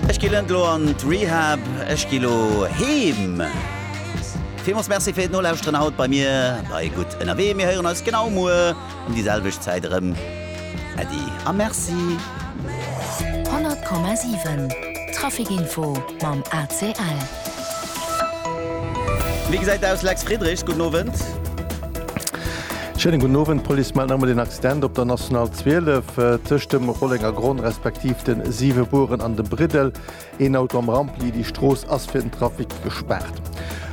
Ech gi lënt lo an d'Rehab, ech gi lo heem. Villmols Merci fir d'Nolauschteren haut bei mir bei Gutt ënnerwee. Mir héieren eis genau muer um déi selwecht Zäit erëm. Äddi a Merci. 100,7 Traffic Info mam ACL. Wéi gesäit et aus, Lex Friedrich? Gudden Owend. Schéinen gudden Owend. D'Police mellt nach emol een Accident op der National 12 tëscht dem Rollenger Gronn respektiv de Siwe Bueren an dem Briddel. Een Auto am Rampli, déi Strooss ass fir den Trafic gespaart.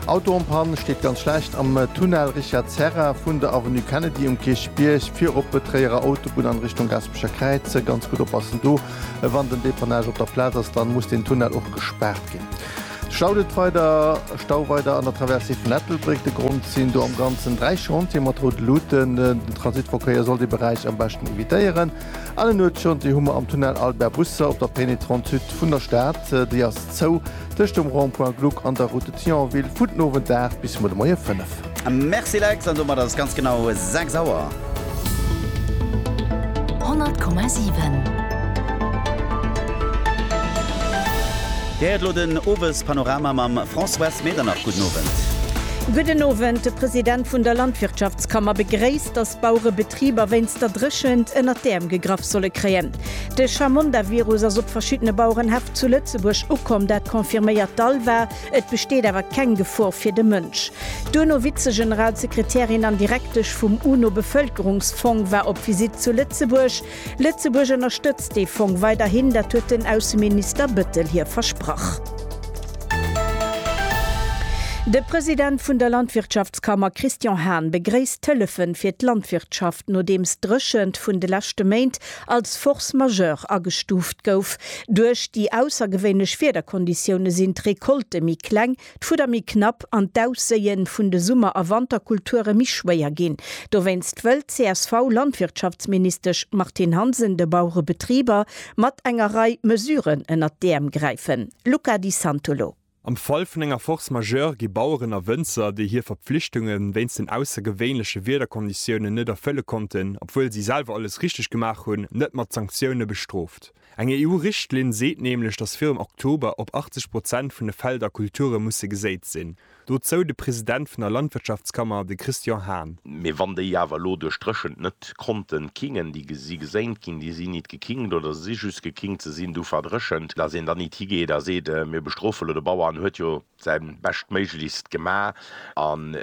Auto am Pann, steet ganz schlecht am Tunnel Richard Serra vun der Avenue Kennedy um Kierchbierg, vir op d'Tréierer Autobunn an Richtung Gaspecher Kräiz. Ganz gutt oppassen do. Wann den Depannage op der Plaz ass, dann muss den Tunnel och gespaart ginn. Stau det weider, Stau weider an der Traversée vun Ettelbréck. De Grond sinn do am Ganzen 3 Chantieren mat route Luuten. Den Transitverkéier soll dee Beräich am beschten evitéieren. An en Nuetschantier hu mer am Tunnel Albert Busser op der Pénétrante Sud vun der Stad. Déi ass zou. tëscht dem Rond-point Gluck an der Route de Thionville vun den Owend 8 bis muer de Moie 5. Merci Lex, an domat ass et ganz genau 6 Auer. 100,7. Dir héiert elo den Owespanorama mam Françoise Medernach. Gudden Owend. Gudden Owend. De President vun der Landwirtschaftskammer begréisst, datt d'Bauerebetriber wéinst der Dréchent ënnert d'Äerm gegraff solle kréien. De Chamonda-Virus ass op verschiddene Bauerenhäff zu Lëtzebuerg ukomm, dat confirméiert d'ALVA. Et besteet awer keng Gefor fir de Mënsch. D'UNO Vize-Generalsekretärin an Direktesch vum UNO-Bevëlkerungsfong war op Visitt zu Lëtzebuerg. Lëtzebuerg ënnerstëtzt dee Fong weiderhin, dat huet den Ausseminister Bettel hir versprach. De President vun der Landwirtschaftskammer Christian Hahn begréisst d'Hëllefe fir d'Landwirtschaft, nodeems d'Dréchent vun de leschte Méint als Force majeure agestuuft gouf. Duerch déi aussergewéinlech Wiederkonditioune sinn d'Recolte méi kleng, d'Fudder méi knapp an d'Ausséie vun de Summer a Wanterkulture méi schwéier ginn. Dowéinst wëll d'CSV-Landwirtschaftsministesch Martine Hansen de Baurebetriber mat enger Rei Mesuren ënnert d'Äerm gräifen. Luca Di Santolo. Am Fall vun enger Force majeure gi Baueren a Wënzer, déi hir Verpflichtunge wéinst den aussergewéinleche Wiederkonditiounen net erfëlle konnten, obwuel si selwer alles richteg gemaach hunn, net mat Sanktioune bestrooft. Eng EU-Richtlinn seet nämlech, datt virum Oktober op 80 Prozent vun de Felder Kulture musse geséit sinn. Dozou de President vun der Landwirtschaftskammer, de Christian Hahn. Mee wann déi awer elo duerch d'Dréchent net d'Konten kingen, déi si gesaint ginn, déi sinn nit gekingt oder se si just gekingt, se sinn du verdréchent, dass een dann nit higeet a seet, mir bestrofe lo de Bauer, en huet jo säi Beschtméiglechst gema, an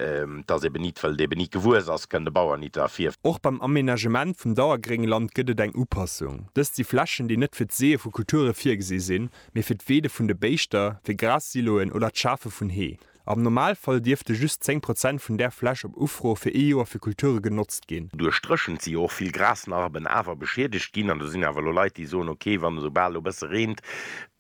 dass eben nit, well et eben nit gewuess ass, kënn de Bauer nit derfir. Och beim Amenagement vum Dauergréngland gëtt et eng Upassung. Dëst si Flächen, déi net fir d'Seeë vu Kulture virgesi sinn, mee fir d'Weede vun de Béischter, fir Gras-Siloen oder d'Schafe vun Hee. Am Normalfall dierfte just 10 Prozent vun där Fläch op Ufro fir ee Joer fir Kulture genotzt ginn. Duerch d'Dréchent si jo och vill Grasnarben awer beschiedegt ginn an do sinn awer elo Leit, déi soen, ok, wann esou bal elo e bësse reent,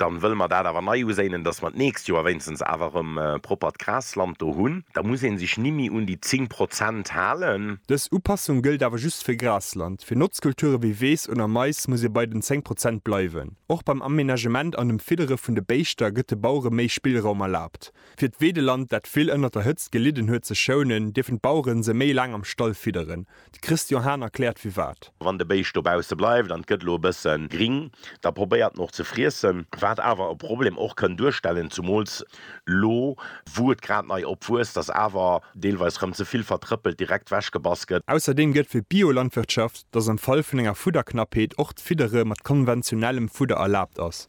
da wëlle mer dat awer nei uséinen, dass mer d'nächst Joer wéinstens awer erëm proppert Grasland do hunn. Da muss ee sech nimmi un déi 10 Prozent halen. Dës Upassung gëllt awer just fir Grasland. Fir Notzkulture wéi Weess oder Mais muss ee bei den 10 Prozent bleiwen. Och beim Amenagement an dem Fiddere vun de Béischter gëtt de Bauere méi Spillraum erlaabt. Fir d'Weedeland, dat vill ënnert der Hëtzt gelidden huet, ze schounen, dierfen d'Bauere se méi laang am Stall fidderen. De Christian Hahn erkläert firwat. Wann de Béischt dobausse bleift an et gëtt elo e bësse gring, da probéiert en och ze friessen, wat awer e Problem och kënn duerstellen, zumools elo wou et grad nei opwuesst, datt awer deelweis rëm ze vill vertrëppelt direkt wechgebass gëtt. Ausserdeem gëtt fir d'Biolandwirtschaft dass am Fall vun enger Fudderknappheet och d'Fiddere mat konventionellem Fudder erlaabt ass.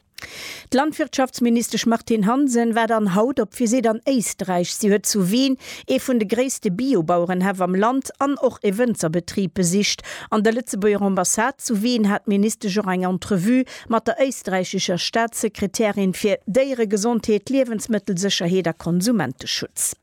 D'Landwirtschaftsministesch Martine Hansen war dann haut op Visitt an Éisträich. Si huet zu Wien ee vun de gréisste Bio-Bauerenhäff am Land an och ee Wënzerbetrib besicht. An der Lëtzebuerger Ambassade zu Wien hat d'Ministesch och eng Entrevue mat der éisträichischer Staatssekretärin fir Déieregesondheet, Liewensmëttelsécherheet a Konsumenteschutz.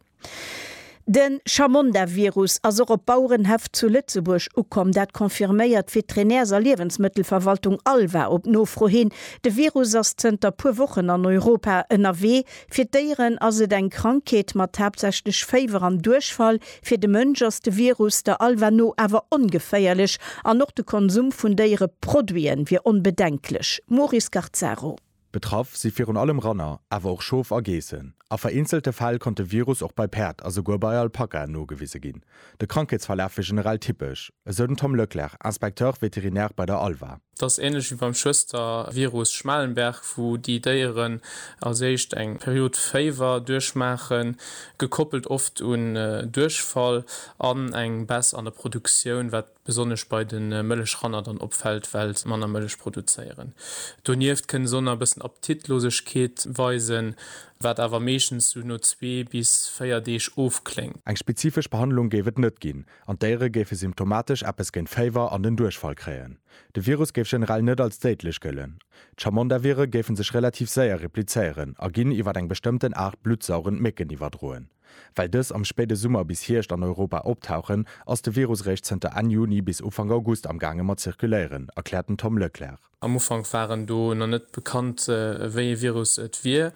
De Chamonda-Virus ass och op Bauerenhäff zu Lëtzebuerg ukomm. Dat confirméiert d'Veterinärs a Liewensmëttelverwaltung Alva op Nofro hin. De Virus ass zënter puer Wochen an Europa ënnerwee. Fir d'Déieren ass et eng Krankheet mat haaptsächlech Féiwer an Duerchfall. Fir de Mënsch ass de Virus der Alva no awer ongeféierlech an och de Konsum vun Déiereproduiten wier onbedenklech. Maurice Garcaro. Betraff si virun allem Ranner, awer och Schof a Geessen. A vereenzelte Fäll konnt de Virus och bei Päerd a souguer bei Alpakaen nogewise ginn. De Krankheetsverlaf wier generell typesch, esou den Tom Leclerc, Inspecteur vétérinaire bei der ALVA. Et ass änlech wéi beim Schwëstervirus Schmalenberg, wou déi Déieren als éischt eng Period Féiwer duerchmaachen, gekoppelt oft un Duerchfall an eng Baisse an der Produktioun, wat besonnesch bei de Mëllechranner dann opfält, well se manner Mëllech produzéieren. Donieft kënne s'on a bëssen Appetitlosegkeet weisen, wat awer meeschtens sou no zwee bis véier Deeg ofkléngt. Eng spezifesch Behandlung géif et net ginn an d'Déiere géife symptomatesch eppes géint Féiwer an den Duerchfall kréien. De Virus géif generell net als déidlech gëllen. D'Chamondavire géife sech relativ séier replizéieren a ginn iwwer eng bestëmmten Aart bluttsaugend Mécken iwwerdroen. Well dës am spéide Summer bis Hierscht an Europa optauchen, ass de Virus réischt zënter Enn Juni bis Ufank August am gaange mat zirkuléieren, erkläert den Tom Leclercq. Am Ufank waren do nach net bekannt, wéi ee Virus et wier,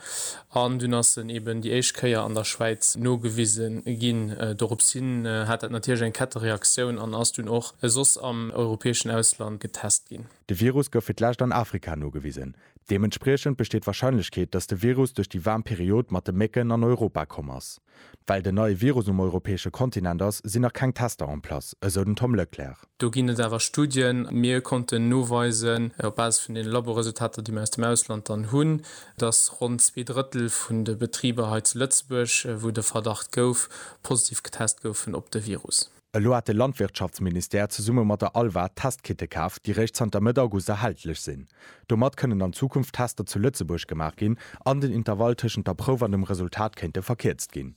an dunn ass en eben déi éischt Kéier an der Schwäiz nogewise ginn. Doropshin hat dat natierlech eng Kettereaktioun an ass dunn och soss am europäeschen Ausland getest ginn. De Virus gouf fir d'lescht an Afrika nogewisen. Deementspriechend besteet d'Warscheinlechkeet, datt de Virus duerch déi waarm Period mat de Mécken an Europa komm ass. Well den neie Virus um europäesche Kontinent ass, sinn nach keng Tester en place, esou den Tom Leclerc. Do ginn et awer Studien. Mir konnten noweisen, op Basis vun deene Laboresultater, déi mir aus dem Ausland dann hunn, datt ronn zwee Drëttel vun de Betriber hei zu Lëtzebuerg, wou de Verdacht gouf, positiv getest goufen op de Virus. Elo hat de Landwirtschaftsministère zesumme mat der ALVA Testkite kaf, déi réischt zanter Mëtt August erhältlech sinn. Domat kënnen an Zukunft Tester zu Lëtzebuerg gemaach ginn an den Intervall tëschent der Prouf an dem Resultat kéinte verkierzt ginn.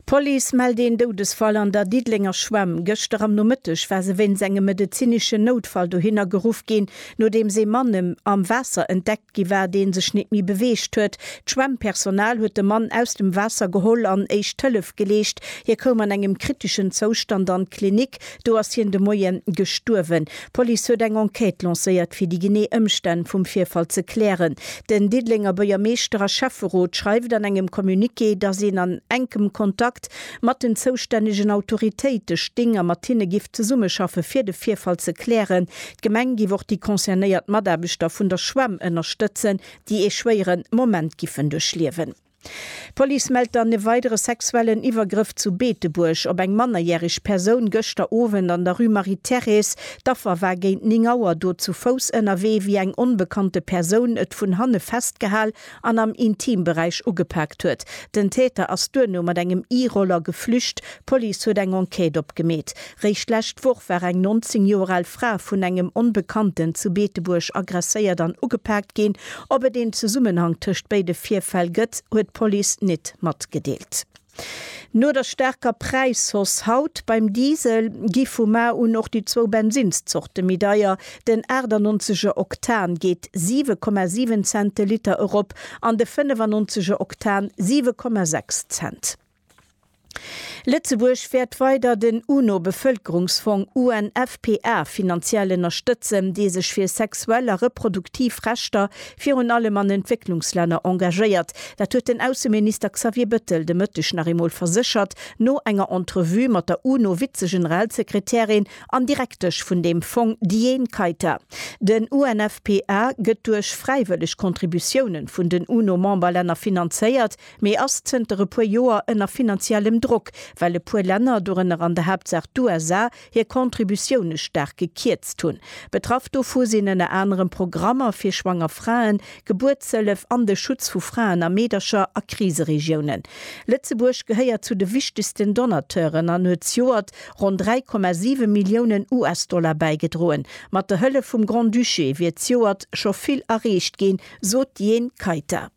D'Police mellt een Doudesfall an der Diddelenger Schwämm. Gëschter am Nomëtteg war se wéinst engem medezineschen Noutfall dohinner geruff ginn, nodeems ee Mann am Waasser entdeckt gi war, dee sech nit méi beweegt huet. D'Schwemmpersonal huet de Mann aus dem Waasser geholl an éischt Hëllef geleescht. Hie koum an engem kriteschen Zoustand an d'Klinik, do ass hien de Moie gestuerwen. D'Police huet eng Enquête lancéiert, fir déi genee Ëmstänn vum Virfall ze klären. Den Diddelenger Buergermeeschter a Schäfferot schreift an engem Communiqué, datt een an enkem Kontakt mat den zoustännegen Autoritéite sting a mat hinne giff zesummeschaffe fir de Virfall ze klären. D'Gemeng giff och déi concernéiert Mataarbechter vun der Schwämm ënnerstëtzen, déi ee schwéiere Moment giffen duerchliewen. D'Police mellt dann e weidere sexuellen Iwwergrëff zu Beetebuerg op eng mannerjäreg Persoun gëschter Owend an der Rue Marie-Thérèse. D'Affer war géint 9 Auer do zu Fouss ënnerwee, wéi eng onbekannte Persoun et vun hanne festgehal an am Intimberäich ugepaakt huet. Den Täter ass duerno mat engem E-Roller geflücht. D'Police huet eng Enquête opgemeet. Réischt d'lescht Woch war eng 19 Joer al Fra vun engem Onbekannten zu Beetebuerg aggresséiert an ugepaakt ginn. Ob et een Zesummenhang tëscht béide Virfäll gëtt, huet d'Police nit matgedeelt. No der staarker Präishausse haut beim Diesel gi vu mar un och déi zwou Bensinnszorte méi deier. Den 98 er Oktan geet 7,7 Cent de Liter erop an de 95 er Oktan 7,6 Cent. Lëtzebuerg wäert weider den UNO-Bevëlkerungsfong, UNFPA, finanziell ënnerstëtzen, dee sech fir sexuell a reproduktiv Rechter virun allem an Entwécklungslänner engagéiert. Dat huet den Ausseminister Xavier Bettel de Mëtteg nach eemol verséchert, no enger Entrevue mat der UNO-Vizegeneralsekretärin an Direktesch vun deem Fong Diane Keita. Den UNFPA gëtt duerch fräiwëlleg Contributiounen vun den UNO-Memberlänner finanzéiert, mee ass zënter e puer Joer ënner finanziellem Drock, well e puer Länner, dorënner an der Haaptsaach d'USA, hir Contributioune staark gekierzt hunn. Betraff dovu sinn ënner anerem Programmer fir schwanger Fraen, Gebuertshëllef an de Schutz vu Fraen a Meedercher a Kriseregiounen. Lëtzebuerg gehéiert zu de wichtegsten Donateuren an huet zjoert ronn 3,7 Milliounen US-Dollar bäigedroen. Mat der Hëllef vum Grand-Duché wier zjoert scho vill erreecht ginn, sot d'Jhene Kayter.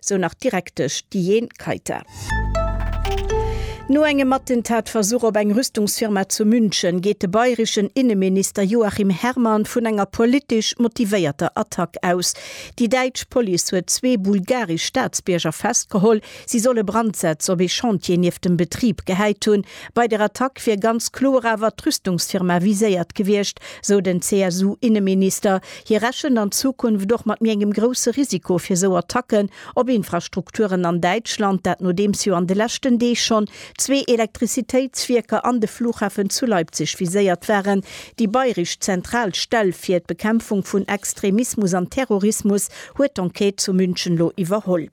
sou nach d'Direktesch Diane Kayter. No engem Attentatversuch op eng Rüstungsfirma zu München geet de bayreschen Inneminister Joachim Herrmann vun enger politesch motivéierter Attack aus. Déi däitsch Police huet zwee bulgaresch Staatsbierger festgeholl, si solle Brandsätz op ee Chantier nieft dem Betrib gehäit hunn. Bei der Attack wier ganz kloer awer d'Rüstungsfirma viséiert gewiescht, sou den CSU-Inneminister. Hie rechent an Zukunft och mat méi engem grousse Risiko fir esou Attacken op Infrastrukturen an Däitschland, dat nodeems jo an de leschten Deeg schonn zwee Elektrizitéitswierker an de Flughafen zu Leipzig viséiert waren. Déi bayresch zentral Stell fir d'Bekämpfung vun Extremismus an Terrorismus huet d'Enquête zu München elo iwwerholl.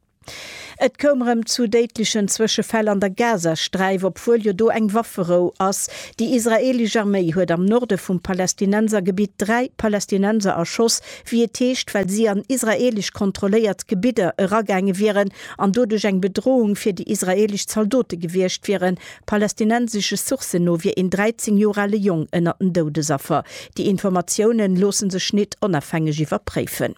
Et koum rëm zu déidlechen Zwëschefäll an der Gazasträif, obwuel jo do eng Wafferou ass. Déi israeelesch Arméi huet am Norde vum Palästinensergebitt dräi Palästinenser erschoss, wéi et heescht, well si an israeelesch kontrolléiert Gebidder eragaange wieren an doduerch eng Bedrohung fir déi israeelesch Zaldote gewiescht wieren. Palästinensesche Sourcen no wier een 13 Joer ale Jong ënnert den Doudesaffer. Déi Informatiounen loosse sech nit onafhängeg iwwerpréifen.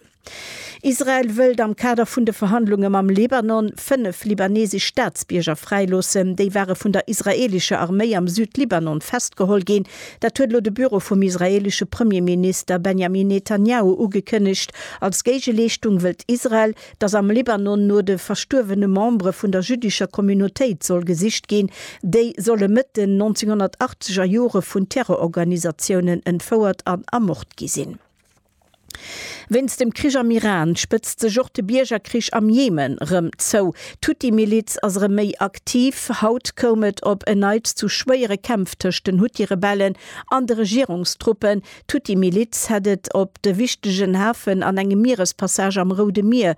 Israel wëllt am Kader vun de Verhandlunge mam Libanon fënnef libanesesch Staatsbierger fräiloossen. Déi ware vun der israeelescher Arméi am Südlibanon festgeholl ginn. Dat huet elo de Büro vum israeelesche Premierminister Benjamin Netanjahu ugekënnegt. Als Géigeleeschtung wëllt Israel, datt am Libanon no de verstuerwene Membere vun der jüddescher Communautéit soll gesicht ginn. Déi solle Mëtt den 1980er Jore vun Terrororganisatiounen entfouert an ermort gi sinn. Wéinst dem Krich am Iran spëtzt sech och de Biergerkrich am Jemen rëm zou. D'Huthi-Miliz ass erëm méi aktiv. Haut koum et op en Neits zu schwéiere Kämpf tëscht den Huthi-Rebellen an de Regierungstruppen. D'Huthi-Miliz hätt et op de wichtegen Hafen an engem Mierespassage am Roude Mier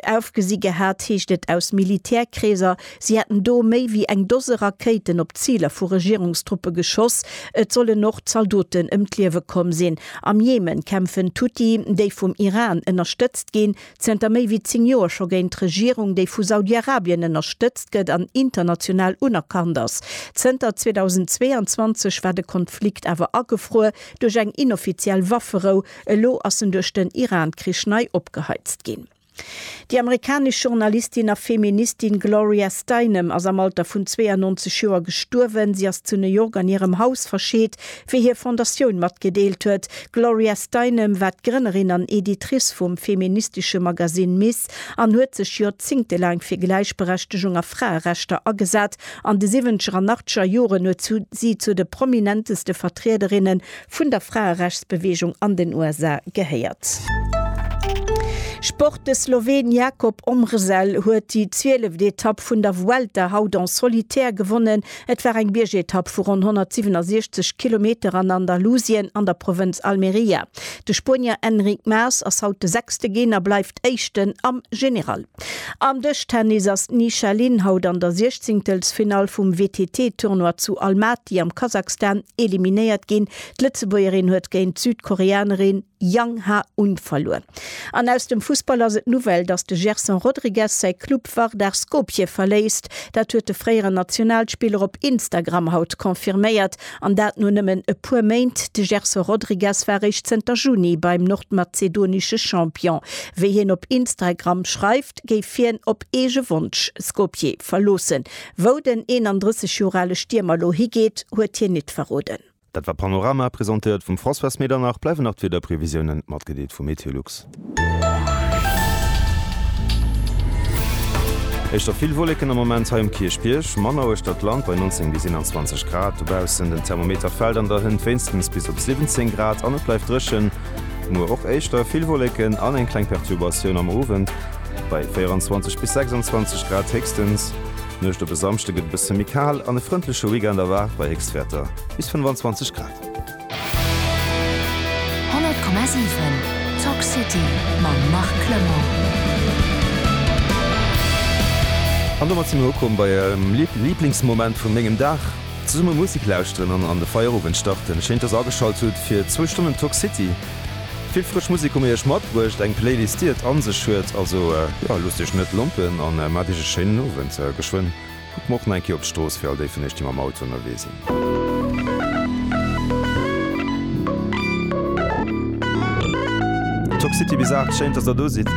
Ofgesi gehat, heescht et aus Militärkreeser, si hätten do méi wéi eng Dose Rakéiten op Ziler vu Regierungstruppe geschoss. Et sollen och Zaldoten ëm d'Liewe komm sinn. Am Jemen kämpfen d'Huthi, déi vum Iran ënnerstëtzt ginn, zënter méi wéi 10 Joer scho géint d'Regierung, déi vu Saudi-Arabien ënnerstëtzt gëtt an international unerkannt ass. Zënter 2022 war de Konflikt awer agefruer duerch eng inoffiziell Wafferou, Elo ass en duerch den Iran-Krich nei opgeheizt ginn. Déi amerikanesch Journalistin a Feministin Gloria Steinem ass am Alter vun 92 Joer gestuerwen. Si ass zu New York an hirem Haus verscheet, wéi hir Fondatioun matgedeelt huet. D'Gloria Steinem war d'Grënnerin an Editrice vum feministesche Magasinn Ms. An huet sech joerzéngtelaang fir Gläichberechtegung a Fraerechter agesat. An de siwwenzeger an achtzeger Joren huet si zu de prominenteste Vertriederinne vun der Fraerechtsbeweegung an den USA gehéiert. Sport, De Sloween Jakob Omrzel huet déi zwieleft Etapp vun der Vuelta haut en solitaire gewonnen. Et war eng Biergetapp vu ronn 167 Kilometer an Andalusien an der Provënz Almeria. De Spuenier Enric Mas ass haut de sechste ginn a bleift Éischten am General. Am Dëschtennis ass d'Ni Sha Lin haut an der Siechzéngtelsfinall vum WTT-Tournoi zu Almaty am Kasakhstan eliminéiert ginn. D'Lëtzebuergerin huet géint d'Südkoreanerin Yang Ha-un verluer. An aus dem Fussball ass et d'Nouvelle, datt de Gerson Rodrigues säi Club Vardar Skopje verléisst. Dat huet de fréieren Nationalspiller op Instagram haut confirméiert. An dat no nëmmen e puer Méint. De Gerson Rodrigues war eréischt zënter Juni beim nordmazedonesche Champion. Wéi hien op Instragram schreift, géif hien op eege Wonsch Skopje verloossen. Wou den 31 Joer ale Stiermer elo higeet, huet hien nit verroden. Dat war Panorama, presentéiert vum François Medernach. Bleiwen nach d'Wiederprevisiounen, matgedeelt vu Meteolux. Éischter vill Wolleken am Moment hei um Kierchbierg, manner uechter d'Land bei 19 bis 21 Grad dobaussen. Den Thermometer fält an der Hënt wéinstens bis op 17 Grad an et bleift dréchen. Muer och éischter vill Wolleken an eng kleng Perturbatioun am Owend bei 24 bis 26 Grad héchstens. D'Nuecht op e Samschde gëtt e bësse méi kal an e frëndleche Weekend erwaart bei Héchstwäerter bis 25 Grad. 100,7 Talk City mam Marc Clement. An domat sinn mir ukomm bei äerem Liblingsmoment vun mengem Dag, Zesumme Musek lauschteren an an de Feierowend starten. Schéin dass ageschalt hutt fir zwou Stonnen Talk City. Vill frësch Musek hu mir iech matbruecht, eng Playlist déi et an sech huet. Also jo, loosst iech net lompen an maacht iech e schéinen Owend. Geschwënn. Kucke mer och nach eng Kéier op d'Strooss fir all déi vun iech, déi mam Auto ënnerwee sinn. Toxicity bis 8, schéin dass der do sidd.